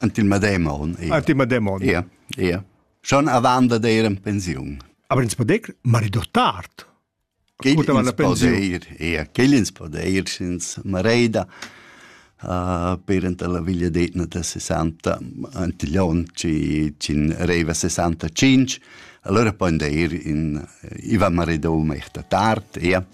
Ant il medem on. Ant il medem on. Ia, ia. Schon avant da dir en pensiun. Aber ins podec marido tard. Ascoltava la pensiun. Ia, quel ins podeir ins mareida. Uh, per anta la villa d'Etna da 60 antiglion ci cin reiva 65 allora poi deir in Ivan Maridou mehta tard ia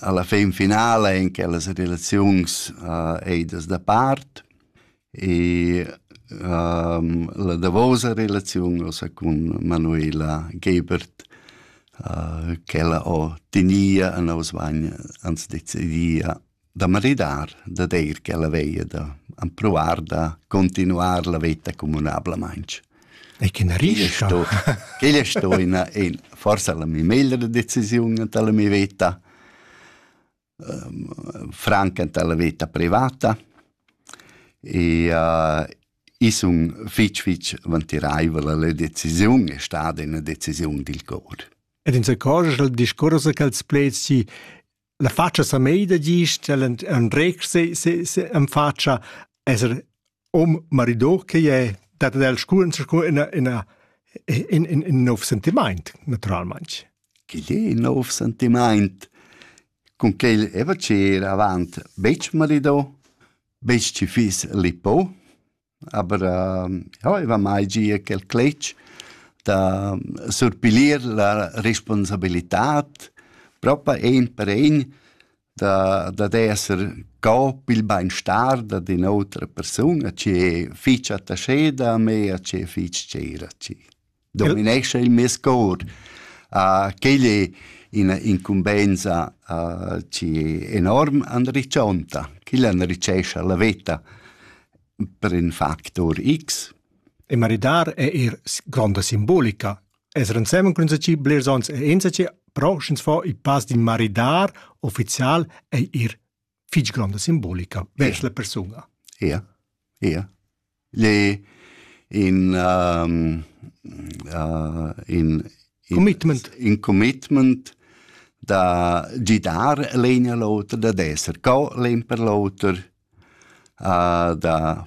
alla fin finala in quellas relaziuns uh, eidas da part e um, la davosa relaziun ossa cun Manuela Gebert uh, che ella ho tinia a nos vagn ans decidia da maridar, da deir ch'ella veia da ampruar da continuar la veta communablamaintg. E che na rischa? Quella è sto ina, in, forse la mia meglra decisiun anta la mia veta, um, franca anta la veta privata, e uh, i sun fitch fitch vantiraivel la decisiun è stata una decisiun dil cor. Ed in se cor il discorso che els pleds si la fatscha sa meida gist, el andretg se, se, se en fatscha esser om marido che è dat el sculen scu in in in in in nov sentiment naturalmente. Quel è in nov sentiment. Con quel è va cer avant betg marido, betg ci fis lipo, Aber äh, ja, i va mai gia quel cletg da surpilir la responsabilitad propa ein per ein da, da esser co pil beinstar da din outra persuna, che fich attascheda a me, a che fich tscheira a ci. dominescha il mes cor. Uh, quel è ina incumbensa uh, enorm anriccionta, quella enricesce la vita per in factor X. E maridar è er gronda simbolica. Es rensemen cun ci blers ons e ensaci, però sch'ins fa il pass din maridar official è er fich gronda simbolica vers la persuna. Ja, ja. Le in um, uh, in, in commitment in commitment da gidar l'egna l'oter da d'esser co l'en per l'oter uh, da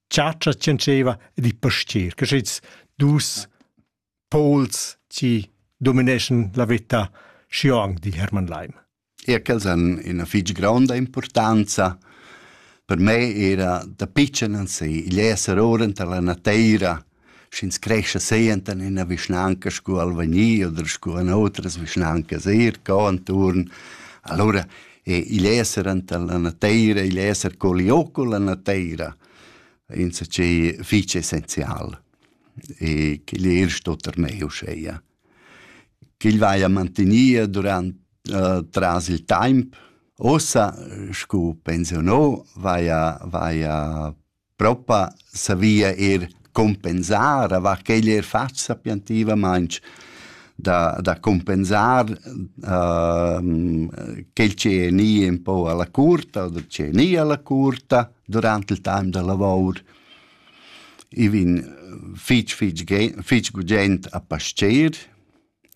chatscha tschentscheva e di pastier, che schits dus pols ci domineschan la vita xiong di Hermann Leim. E quels han ina fitg gronda importanza per me era da pitschen an se, igl esser ora tar la nateira sch'ins crescha senten in ina vischnanca sco Alvagni oder sco in otras vischnancas eir co anturn. Allura e igl esser enta la nateira, igl esser co liò con la nateira, insatgei fich essenzial. E ch'igl er sto termei uscheia. Ch'igl vaia mantinia durant uh, tras il taimp. Ossa, scu pensionò, vaia, vaia Propa savia eir cumpensar, avant ch'el eir fat sapientivamaing da da cumpensar quel chi è gnì ün po a la curta o chi è gnì a la curta durant il taim da lavour. I vin fich fich fich gugent a pascher,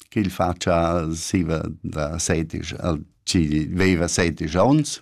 ch'el fatscha siva da sedisch al chi veiva sedisch ons.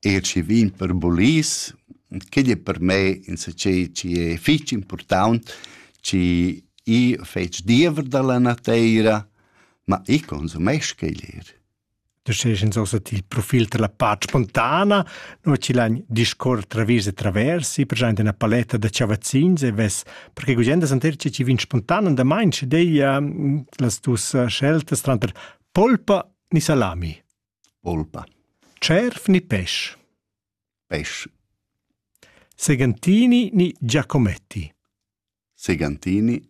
eir schi vin per bulis, chi'd es per me insachet chi es fich important, chi i fetsch diever da la nateira, ma i consumesc quel eir. Tu sest ins ossa til profil da la part spontana, no chi l'han discuor travis e traversi, per giaint üna paletta da chavazzins e vess, perché gugent as anter chi vin spontan andamaint, schi deia las tuas sceltas tranter polpa ni salami. Polpa. Cerf ni pesch? Pesch. Segantini ni Giacometti? Segantini.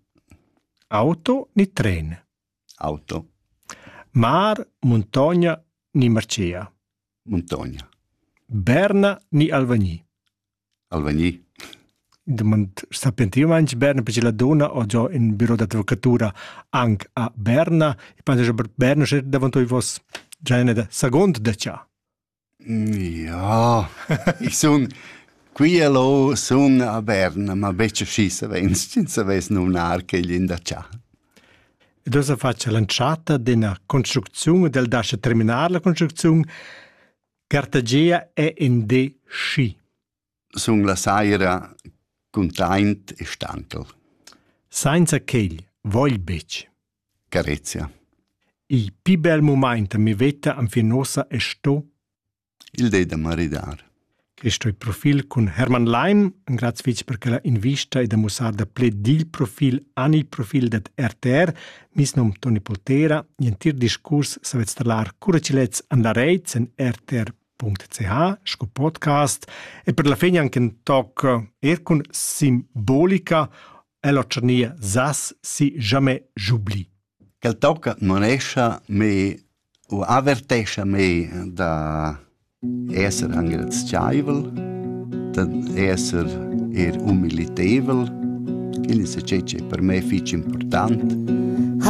Auto ni tren? Auto. Mar, muntogna ni marcea? Muntogna. Berna ni Alvagni? Alvagni. Demand sapentivmaing berne perche la donna ho giò ün büro d'advocatura anc a Berna e pensa che Berna sia davanto i vos genere da second da cha. Ja, ich sun qui e là sun a Berna, ma betg schi savens, ch'ins savess numnar quel in da cha. Ed ossa faccia l'entschatta d'ena construcziun del dascha terminar la construcziun Cartagia è in de schi. Sun la saira cuntaint e stanchel. Sainza quel vogl betg. Carezia. Il pi bel moment mi veta am finosa è sto. Il de da maridar. Questo è profil con Hermann Leim, un grazie per quella invista e da mussar da ple dil profil an il profil dat RTR, Mis num Toni Poltera, l'entir discurs savet stallar cura chi lets an la reit sen rtr.ch sco podcast e per la fin anche in toc er cun simbolica e la tscharnia sas si jamais j'oublie. Quel tocca manescha me u avertescha mei da esser engrazievel, da esser er humilitevel, quindi se c'è c'è per me fich important.